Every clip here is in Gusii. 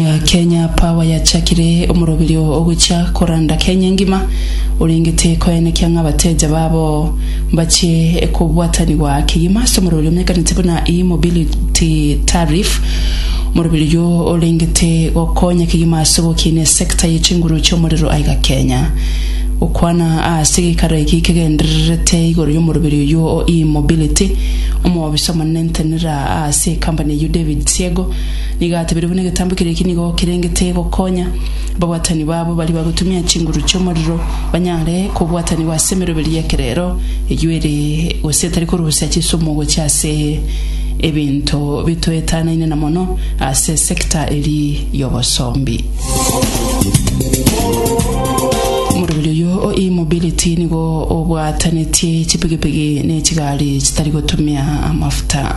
ya Kenya Power yachakire omoroberio ogochia koranda Kenya engima, orengete koenekia ng'a abateja babo mbachie kobwatanigwa kegima ase omoroberio omenyekanete buna E-Mobility Tariff. Omoroberio oyio orengete gokonya kegima ase ogokina esector ye chinguru chi'omorero aiga Kenya. Gokwana ase geikaro eki kegendererete igoro y'omoroberio oyio o E-Mobility, omoofisa omonene ntenera ase ekampani eyio David Siego, Nigo atebire buna egetambo keria eki nigo kerengete gokonya ababwatani babo baria bagotumia chinguru chi'omorero banyare kobwatanigwa ase emeroberio y'ekerero eyio ere gose etari korusia chisumu gochia ase ebinto bitoetanaine na mono ase sector eria y'obosombi. Omoreberi oyio o e-mobility nigo obwatanetie chipigipigi ne chigari chitari gotumia amafuta.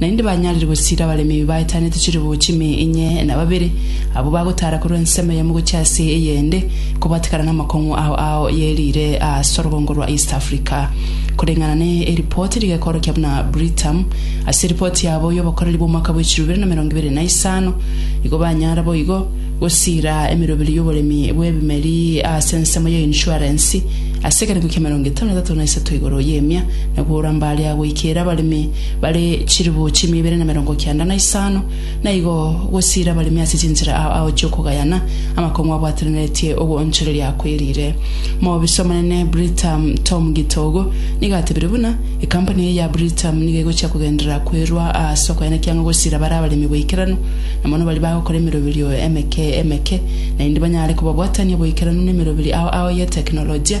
Naende banyarire gosiira abaremi ebi baetanete chilifu chime inye na babere, abwo bagotaara korwa ensemo eyemo gochia ase eyende, kobatekana namakong'u ao ao ye riire aase orogongo rwa East Africa. Koreng'ana ne eripoti rigekoorokia buna Britam, ase eripoti yabo y'obokoreri bw'omwaka bw'echilifu ibere na emerongo ibere na isano, igo banyara boigo gosiira emeroberi y'oboremi bw'ebimeri aase ensemo ya insurance ase ekerengo kia emerongo etano na etato na isato igoro y'emia na kogora mbaria goikeera abaremi bare chilifu chi'mia ibere na merongo kianda na isano, na igo gosiira abaremi ase chinchera ao ao chi'okogayana amakong'u abwatananetie ogw'oonchoreria akweriire. Moobiso omonene Britam Tom Gitogo nigo atebirie buna, Ekampuni eye ya Britam nigo egochia kogenderera kwerua aase okogayana ekiang'o gosiira bare abaremi boikeranu, na mono baria bagokora emeroberio emeke emeke, naende banyare kobabwatania boikeranu nemeroberi ao ao y'etekinolojia.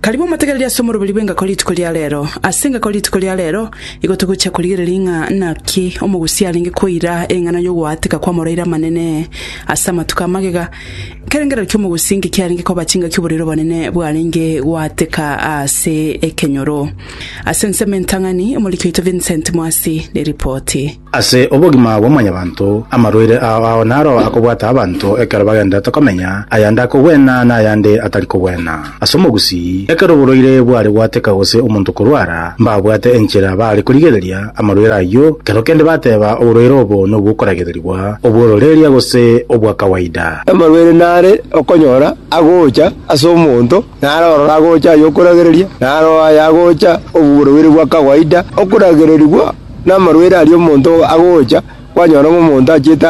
Karibu motegereri ase omoroberi bw'engako rituko ria reero. Ase engako rituko ria reero igo togochia korigereria ng'a naki omogusii arenge koira eng'ana y'ogoaateka kw'amoroira amanene ase amatuko a magega. Ekerengerero ki'omogusii inki kiarenge koba chingaki oborwaire obonene bwarenge goaateka ase ekenyoro? Ase ensemo entang'ani, omoriki oito Vincent Mwasi neripoti. Ase obogima bwa mwanyabanto, amarwaire ao ao naro akobwata abanto ekero bagenderete komenya, ayande akogwena na ayande atari kogwena. Ase omogusii, ekero oborwaire bware gwateka gose omonto korwara, mbabwate enchera baare korigereria amarwaire ayio, kero kende bateba oborwaire obo nobwokoragererigwa, obw'ororeeria gose obwa kawaida. Amarwaire nare okonyora agocha ase omonto, naro ororo agocha ay'okoragereria, naro aya agocha obworwaire bwa kawaida, okoragererigwa. Namarwaire aria omonto agocha, kwanyora ng'a omonto achiete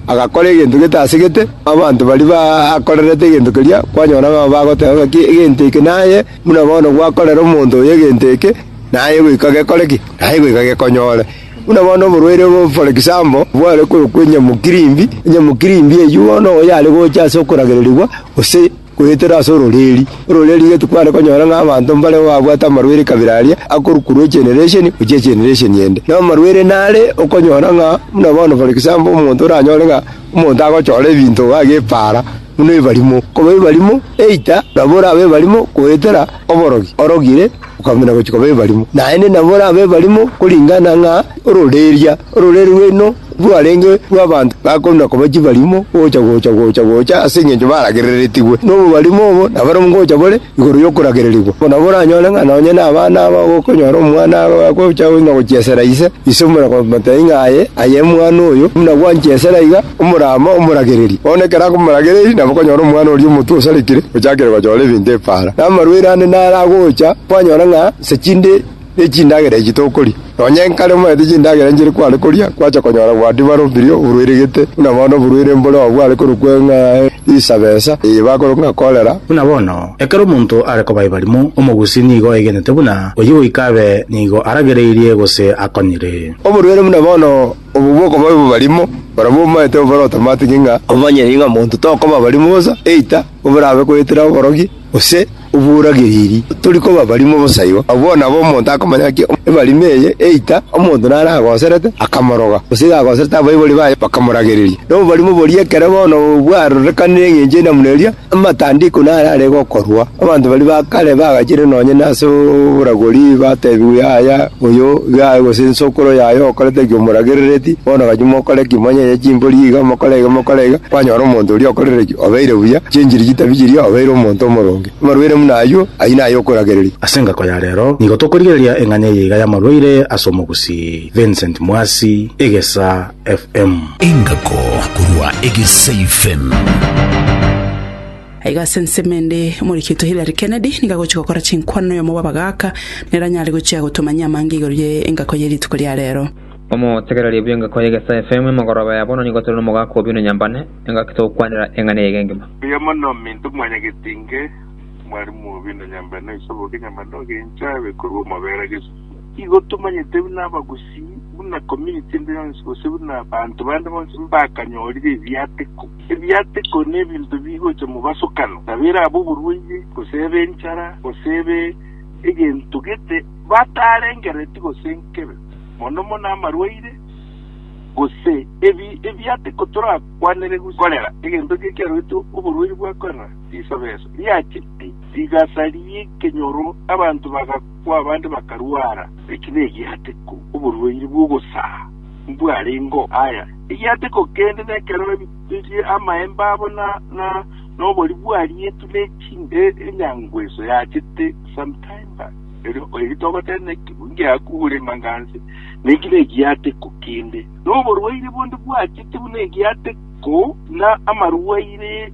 agakora egento getasegete, abanto baria bakorerete egento keria, kwanyora ng'a bagoteba ng'aki egento eke naye, buna bono gwakorera omonto oyo egento eke, naye goika gekore ki? Naye goika gekonyore. Buna bono oborwaire obo for example, bware korokwa enyamokirimbi, enyamokirimbi eyio bono oyare gocha ase okoragererigwa gose. Goetera ase ororeeri. Ororeeri getu kware konyora ng'a abanto mbareo babwate amarwaire ekabira aria akorukurwa egeneration gochia egeneration ende. Na amarwaire nare okonyora ng'a buna bono for example omonto oranyore ng'a omonto agochora ebinto iga agepaara buna ebarimo. Koba ebarimo either nabo orabe ebarimo goetera oborogi orogire. okong'ina gochia koba ebarimo, naende nabo orabe ebarimo koringana ng'a ororeeria orore rwaino rwarenge rw'abanto bakong'ina koba chibarimo gocha gocha gocha gocha ase engencho baragerereretigwe nobobarimo obo naboro ngocha bore igoro y'okoragererigwa. Obo nabo oranyore ng'a nonye nabana aba ogokonyora omwana agocha ng'a gochiesera ise, ise omotebi ng'a aye aye omwana oyo buna gwanchiesera iga, omorama omoragererie. Bono ekero akomoragereiri nabo okonyora omwana oria omotu osarekire ochakire gochora ebinto epaara. Namarwaire ande naro agocha, kwanyora ng'a inse chinde ne chindagera echi tokoria. Nonya nkare omanyete chindagera inche ere kware koria, kwacha konyora bwati barombirie oborwaire gete, buna bono oborwaire mbore obo bware korokwa ng'a risabesa, eye bakorokwa ng'a korera. Buna bono, ekero omonto are koba ebarimo, omogusi nigo aegenete buna oyio goika abe nigo aragereirie gose akonyire. Oborwaire buna bono obo bw'okoba ebarimo, barabwo omanyete obo barotamatike ng'a omanyire ng'a monto tokoba barimo bosa, eita. Oborabe goetera oborogi, gose oboragereri, tori koba barimo bosa igo. Abwo nabo omonto akomanya ng'aki ebarimo eye eita, omonto naragoserete, akamoroga, gose iga agoserete abaibori baye, bakamoragereria. Na oborimo boria ekero bono bwarorekanire engencho eye na buna eria, amatandiko narare gokorwa. Abanto baria ba kare bagachire nonye nase oboragori, batebigwe yaya oyo iga aye gose nsokoro yaye okorete eki omoragerereti, bono gachia mokore eki, monyeye chimbori iga, mokore iga, mokore iga, kwanyora omonto oria okorire eki. Obeire buya, chenchiri chitabi chiria obeire omonto omoronge. Amarwaire buna ayio, ayio naye okoragereria. Ase engako ya rero, nigo tokorigereria eng'anya eye iga y'amarwaire ase omogusii. Vincent Mwasi, Egesa FM. Engako korwa Egesa FM. Aiga ase ensemo ende, omoreketo Hillary Kennedy nigo agochia gokora chinkwano noyomo bw'abagaaka, nere anyare gochia gotomanyia amange igoro ye engako ye rituko ria rero. Omotegereria bw'engako ya Egesa FM, Emegoroba ya bono nigo tore nomogaaka Obino Nyambane. engaki togokwanera eng'ana eyio engima. Mbuya mono ominto mwanyagete inge, mwarimu obi na nyambere na oise oboke, nyambere na ogencho abe korwa omobera gesu. Igo tomanyete buna abagusii, buna community ende yonsi gose buna abanto bande bonsi mbakanyorire ebiateko. Ebiateko nebinto bigocha mobasokano, nabo ere abe oborwaire, gose ebe enchara, gose ebe egento gete batarengereti gose nkebe, mono mono amarwaire. gose ebi ebiaate kotorakwanere korera egento ekiya kiaroetwe oborwaire bwa korera risabeso riachete rigasa ri'ekenyoro abanto bagakwa abande bakarwara. Eki negiateko oborwaire bw'ogosaa mbwarengeo aya egiateko kende nekero ebirie amaemba abo na na nobori bwarietwe ne chinde enyangweso yachete sometime back. Erio erio togotenena ekibu ngiakure maganse, na ekibe egiate ko kende, na oborwaire bonde bwachete buna egiate ko, na amarwaire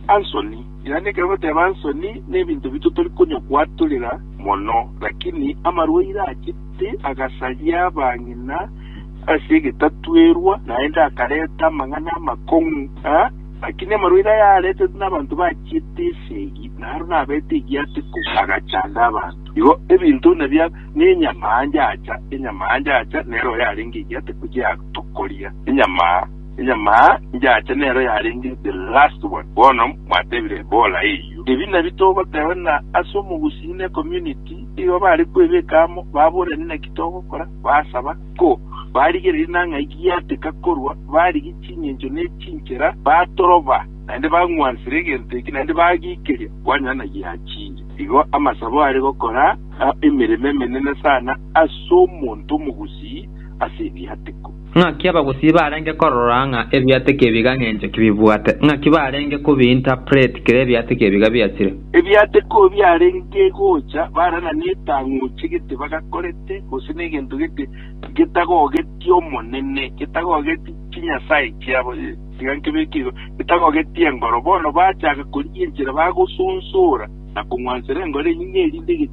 a nsoni, yaani ekero bateba nsoni nebinto bito tori konya koatorera mono, lakini amarwaire achete agasaria abang'ina ase egetatwerwa, naende akareta amang'ana amakong'u, aa. Naki nemarwaire ayaaretetwe nabanto bachiete esegi, na aro nabeete egiato ikomo, agachanda abanto. Igo ebinto buna bia nenyama anja acha, enyama anja acha nero yarenge egiato iko giatokoria, enyama enyama anja acha nero yarenge the last one. Bono mwatebire Ebola eyio. Ebi nabio togoteba ng'a ase omogusii ne community igo bare kwebeka amo, baborane naki togokora, basaba. Ko barigereria na ng'ai giateka korwa, barigia chingencho ne chinchera, batoroba, naende bang'wansera egento eke, naende bagiikeria kwanyora na giachingi. Igo amasabo are gokora, na emeremo emenene sana ase omonto omogusii ase ebiateko. Ng'aki abagusii barenge korora ng'a ebiateko ebi gang'enchoki bibwate? Ng'aki barenge kobi-interpret kera ebiateko ebi gabiachire? Ebiateko biarenge gocha bara na netang'uche gete bagakorete, gose negento gete getagogeti Omonene, getagogeti chinyasae chiabo, tiga nkebeke igo, getagogeti engoro, bono bachaka korigia enchera bagosunsora na kong'wansera engoro enyinge erinde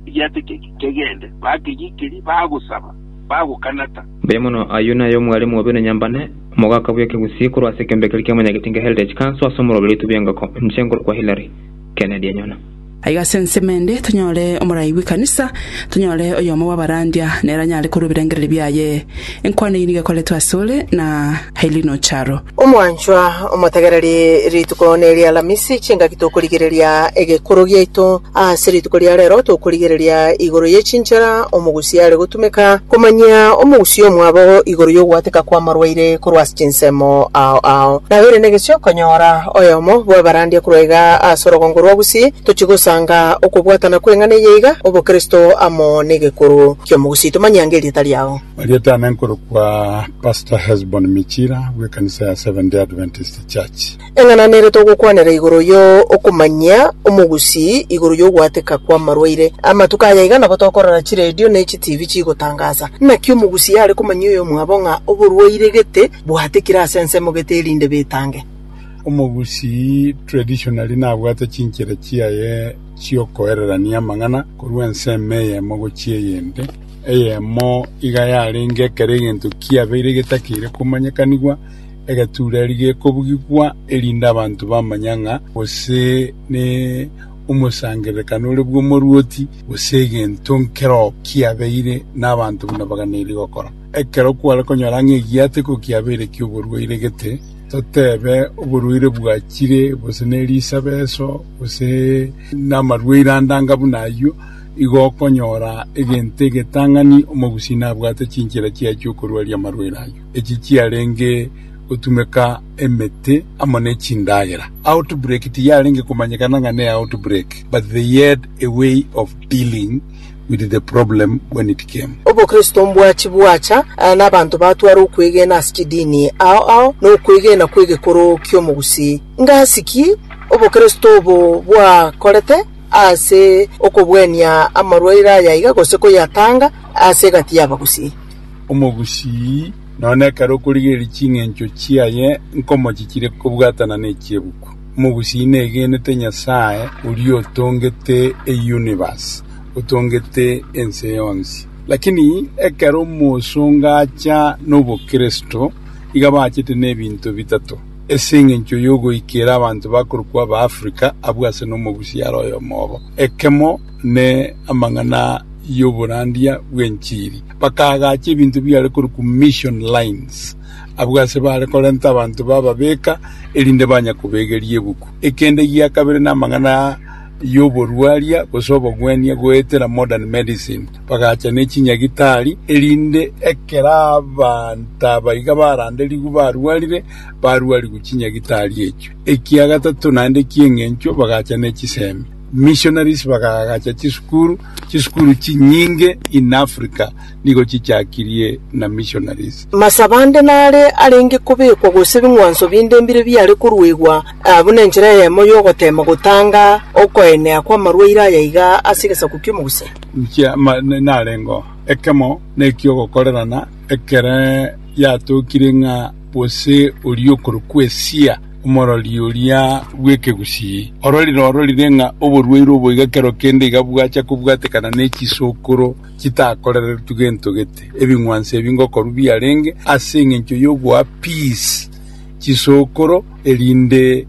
egiateko eke kegende, bakegikeria, bagosaba, bagokanata. Mbuya mono, ayio naye omwalimu obe nonyambane, omogaka bw'ekegusii korwa ase ekeombe keria ki'amanyagetinga Heritage Council ase omoroberio oitwe bw'engoko inche ngorokwa Hillary Kennedy Enyona. Aiga ase ensemo ende tonyore omorai bw'ekanisa, tonyore oyomo bw'abarandia nere anyare korwa ebirengererio biaye. Enkwano eyio nigo ekoretwe asore, na. Helino Charo. Omwanchwa omotegereri, rituko neri'Alamisi, chingaki tokorigereria egekoro giaito? Ase rituko ria rero tokorigereria igoro ye chinchera omogusi are gotumeka komanyia omogusi omwabo igoro y'ogoateka kw'amarwaire korwa ase chinsemo ao ao. Nabeire negesio konyora oyomo bw'abarandia korwa iga ase orogongo rwa Gusii. Tochi gosanga okobwatana kw'eng'ana eye iga, Obokristo amo n'egekoro ki'omogusi. Tomanyia nge erieta riao. Bariete ane nkorokwa Pastor Hesbon Michira bw'ekanisa ya Seventh Day Adventist Church. Eng'ana nere togokwanera igoro yo okomanyia omogusii igoro y'ogoateka kw'amarwaire. Amatuko aya iga nabo tokorora chiredio ne chitivi chigotangaza. Naki omogusii are komanyia oyomwabo ng'a oborwaire gete bwatekire ase ensemo gete erinde betange. Omogusii traditionally nabwate chinchera chiaye chi'okoererania amang'ana korwa ensemo eyemo gochia eyende. Eyemo iga yarenge ekero egento kiabeire getakeire komanyekanigwa, egetureri gekobugigwa, erinde abanto bamanye ng'a gose nomosangererekano ore bw'omoruoti, gose egento nkero kiabeire nabanto buna bagana eri gokora. Ekero kware konyora ng'a egiato iko kiabeire ki'oborwaire gete, totebe oborwaire bwachire, gose nerisabeso, gose namarwaire ande anga buna ayio, igo okonyora egento egetang'ani omogusii nabwate chinchera chiaye chi'okorwaria amarwaire ayio, echi chiarenge gotumeka emete amo ne chindagera. Outbreak tiyarenge komanyekana ng'a ne outbreak, but they had a way of dealing with the problem when it came. Obokristo mbwachi bwacha n'abanto batwara okwegena ase chidini ao ao n'okwegena kw'egekoro ki'omogusii. Ng'asi ki obokristo obo bwakorete? ase okobwenia amarwaire ayaiga gose koyatanga ase egati y'abagusii. Omogusii, nonya ekero okorigereria ching'encho chiaye nkomo chichire kobwatana n'echiebuku, omogusii negenete Nyasae oria otongete euniverse, otongete ense yonsi. Lakini ekero omosonga acha nobokristo, iga bachete nebinto bitato. Ase engencho y'ogoikera abanto bakorokwa Abaafrika abwo ase nomogusi are oyomo obo, ekemo ne amang'ana y'oborandia bw'enchiri, bakaagacha ebinto biare korokwa mission lines abwo ase baare korenta abanto bababeka erinde banya kobegeria ebuku. Ekende gia kabere namang'ana y'oborwaria gose obogwenia goetera modern medicine. Bagacha ne chinyagitari, erinde ekero abanto aba iga baranderigwe barwarire, barwarigwe chinyagitari echio. Ekia gatato naende eki'engencho, bagacha ne chisemi, missionaries, bagaagacha chisukuru. Chisukuru chinyinge in Africa nigo chichakirie na missionaries. Masaba ande nare arenge kobekwa gose bing'wanso binde mbire biare koruegwa buna enchera eyemo y'ogoteema gotanga okoenea kw'amarwaire aya iga ase egesaku ki'omogusii. Inche amang'ana narengeo, ekemo neki'ogokorerana, ekero yatookire ng'a gose oria okorokwa Esia, omorori oria bw'ekegusii, ororire ororire ng'a oborwaire obo iga kero kende iga bwacha kobwatekana ne chisokoro chitakorereretu gento gete, ebing'wanso ebi ngokorwa biarenge ase engencho y'ogoa peace chisokoro, erinde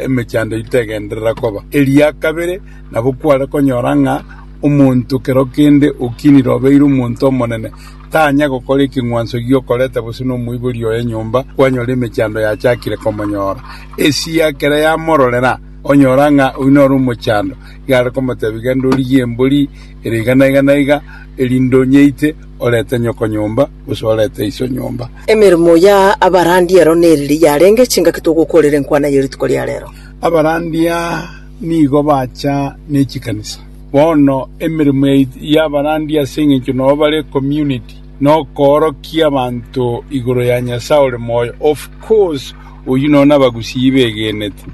emechando eye tegenderera koba eria kabere. Nabo kware konyora ng'a omonto kero kende okinire obeire omonto omonene, tanya gokora ekeng'wanso gi'okoreta bosio nomoibori oye nyomba, kwanyora emechando yachakire komonyora. Esia ekero yamororera, onyora ng'a oyio nore omochando, iga are komotebia, Genda origie embori ere iga na iga na iga, erinde onyeite, orete nyoko nyomba, gose orete iso nyomba. Emeremo ya abarandi ero neriria yarenge chingaki togokorera enkwana ye rituko ria rero? Abarandi a. nigo bacha ne chikanisa. Bono emeremo yaito y'abarandi ase engencho nao bare community nokoorokia abanto igoro ya Nyasae ore moyo. Of course oyio noo nabagusii begenete,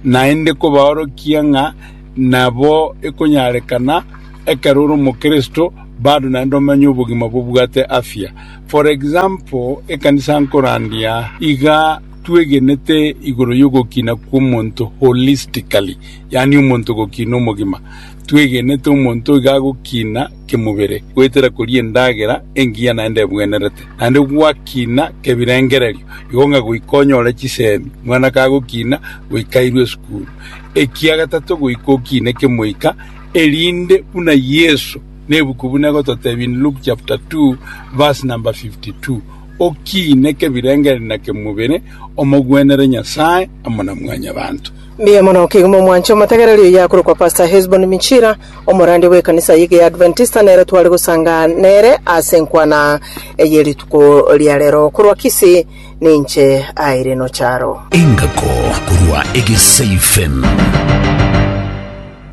naende kobaorokia ng'a nabo ekonyarekana ekero ore omokristo bado naende omenye obogima bobwate afya. For example, ekanisa nkorandia iga, twegenete igoro y'ogokina kw'omonto holistically, yaani omonto gokina omogima. Twegenete omonto iga agokina kemobere, goetera koria endagera engiya naende ebwenerete, naende gwakina kebirengererio, igo ng'a goika onyore chisemi, mwana kagokina goika airwe esukuru, ekia gatato goika okine kemoika, erinde buna Yeso nebuku buna egototebia in Luke chapter 2 verse number 52, Okiine kebirengererio na kemobere, omogwenere Nyasae amo na mwanyabanto. Mbuya mono kegima omwanche omotegereri oyio akorokwa Pastor Hesbon Michira, omorandia bw'ekanisa y'egeadventista nere tware gosanga nere ase enkwana eye rituko ria rero. Korwa Kisii ninche Irene Ocharo. Engako korwa Egesaifem.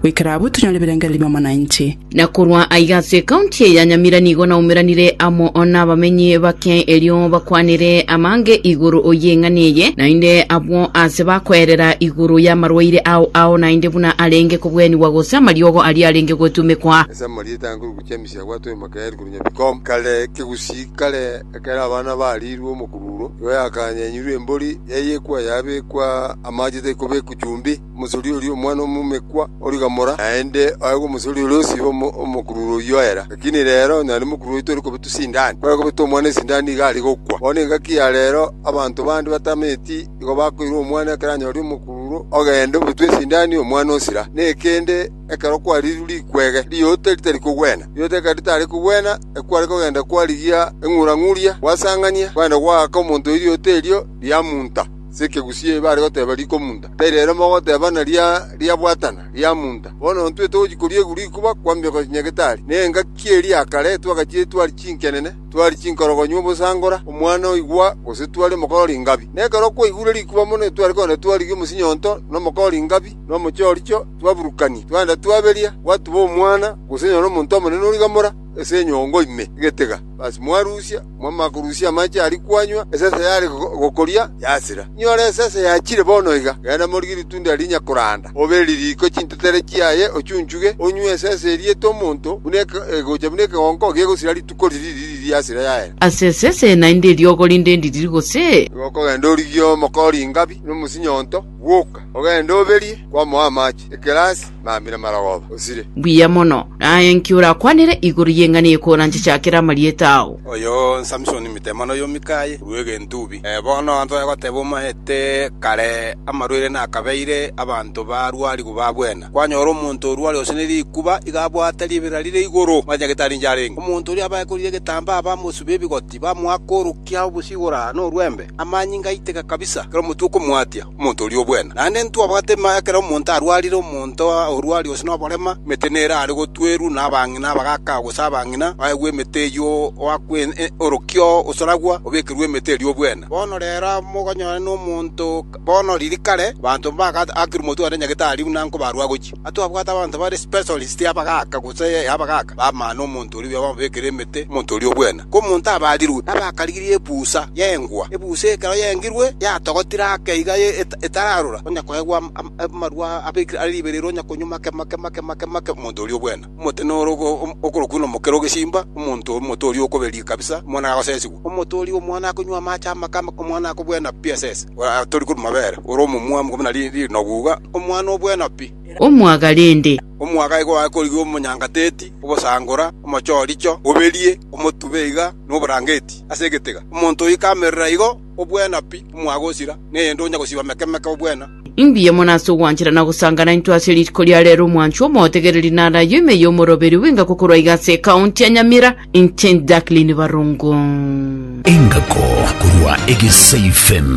goikera abwo tonyore ebirengererio bi'omonanchi. Na korwa aiga ase ekaunti eye ya Nyamira nigo naumeranire amo nabamenyi bake erio bakwanere amange igoro y'eng'ana eye, naende abwo aase bakoerera igoro y'amarwaire ao ao naende buna arenge kobwenigwa gose amariogo aria arenge gwetumekwa. Ase amarieta ankoro gochia emisia gwatwa emaka eri korunywa bikombe. Kare kegusii kare ekero abana bariirwe omokururo, nigo yakaanyenyirwe embori, yaiyekwa, yabekwa amache tari kobekwa chumbi. Omosori oria omwana omomekwa origamora, naende aegwe omosori oria osiba omokurure oyio oera. Lakini rero onye naende mokurure oyio tori kobetwa sindani, ekero akobetwa omwana esindani nigo aria gokwa. Bono engaki ya rero abanto bande batameti nigo bakoira omwana ekero anyoria omokurure, ogende obetwe esindani omwana osira. Nekende ekero kwariirwe rikwege, riota ritari kogwena. Riota ekero ritari kogwena, ekero kware kogenda kwarigia eng'urang'uria, gwasang'ania, kwenda gwaaka omonto oirioto erio, riamunta. Sekegusii eye bare goteba rikomunta, tari rero mogoteba naria riabwatana, riamunta. Bono ntwete gochia koria iguru ikuba kwambia gocha Nyagetari, na engaki eria ya kare twagachirie twari chinkenene, twari chinkorogonyu obosangora omwana oigwa, gose twari omokoro o ringabi. Na ekero okwaigure rikuba mono etware kogenda twarigia omosinyoonto na omokoro o ringabi, na omochoricho, twaburukania, twagenda twaberia, gwatuba omwana, gose nonya nomonto omonene origa mora, ase enyongo ime egetega. Basi mwarusia, mwamanya korusia amache aria kwanywa, esese yare gokoria yasira. Inyore esese yachire bono iga, genda morigie ritunda rinya koranda, obe ririko chintetere chiaye, ochunchuge, onywe esese eria ete omonto, buna egocha buna ekegonko gegosira rituko riria ririri yasira yaera. Ase esese naende eriogo rinde ririri gose? Igo okogenda origie omokori ingabi, na omosinyo onto, bwoka, ogende oberie, kwamoa amache, ekerasi. mambi namarogoba osire. Mbuya mono, naye inki orakwanere igoro y'eng'ana eye koranche chakera amarieta ao? Oyo Samsoni Mitemani oyo Mikai korwa Egentubi. Bono antoe goteba omaete kare amarwaire nakabeire abanto barwarigwe babwena. Kwanyora omonto orware gose ne rikuba iga abwate ribera rire igoro, omanyete gete arinche arenge. Omonto oria abae korire egetambaa bamosube ebigoti, bamoake orokia obosio igoro aa norwembe, amanyinga aiteka kabisa, ekero omotwe okomwatia. omonto oria obwene. Naende ntwabwate ng'a ekero omonto arwarire, omonto orwari gose noborema, emete nere are gotwerwa nabang'ina abagaka gose abang'ina, baegwe emete eyio oakwe orokio osoragwa, obekerwe emete eria obwene. Bono rero mogonyore nomonto bono riria kare abanto mbaka akire omotwe one nyagetari buna nkobarwa agochia. Atwabwate abanto bare specialist abagaka gose abagaka b'amano omonto oria obwene bamobekere emete omonto oria obwene. Omonto abarirwe abakarigirie ebusa y'engwa. Ebusa ekero yengirwe yatogotire ake iga etararora onye koegwa amarwa abekire are riberero onye konywa make make make make make omonto oria obwene. Omote noro okorokwa ng'a omokera ogesimba, omonto omote oria okoberia kabisa, omwana gagosesigwa. Omote oria omwana akonywa amache amake amake, omwana akobwena pi asese, ore atori korwa mabere, ore omomwamu buna rinogu iga, omwana obwena pi. omwaga rende. Omwaga igo akorigwe omonyangateti, obosangora, omochoricho, oberie, omotube iga noborangeti ase egetega. Omonto oikamerera igo obwena pi, omwaga osira, neyende onya gosiba meke-meke obwena. Mbuya mono ase ogwanchera na gosanga naintwe ase rituko ria rero omwanchwa omotegereri na arayo ime y'omoroberi bw'engako korwa iga ase ekaunti ya Nyamira, Inchent Jacqueline Barongo. Engako korwa Egesaifem.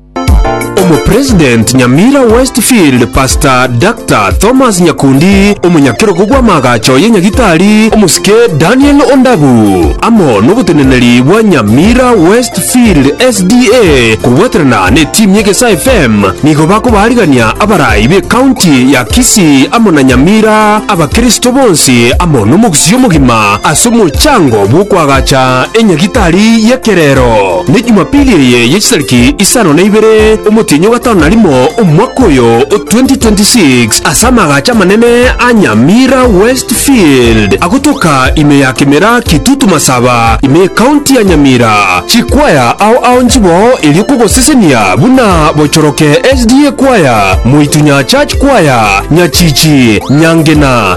Omopresident Nyamira Westfield Pastor Dr. Thomas Nyakundi, omonyakerogo bw'amaagacho ye Nyagitari omosike Daniel Ondabu, amo noboteneneri bwa Nyamira Westfield SDA kobwaterana ne team ye Gesa FM nigo bakobaarigania abarai be county ya Kisii amo na Nyamira abakristo bonsi amo nomogusii omogima ase omochango bw'okoagacha enyagitari y'ekerero. Ne Jumapili eye ye chitariki isano na ibere omotienyi o gatano na rimo omwaka oyo o 2026 ase amagacho amanene a Nyamira West Field agotoka ime ya Kimera Kitutu Masaba ime y'Ecounty ya Nyamira. Chikwaya ao ao nchiboo erio kogosesenia buna Bochoroke SDA Kwaya, Moitunya Church Kwaya, Nyachichi, Nyangena,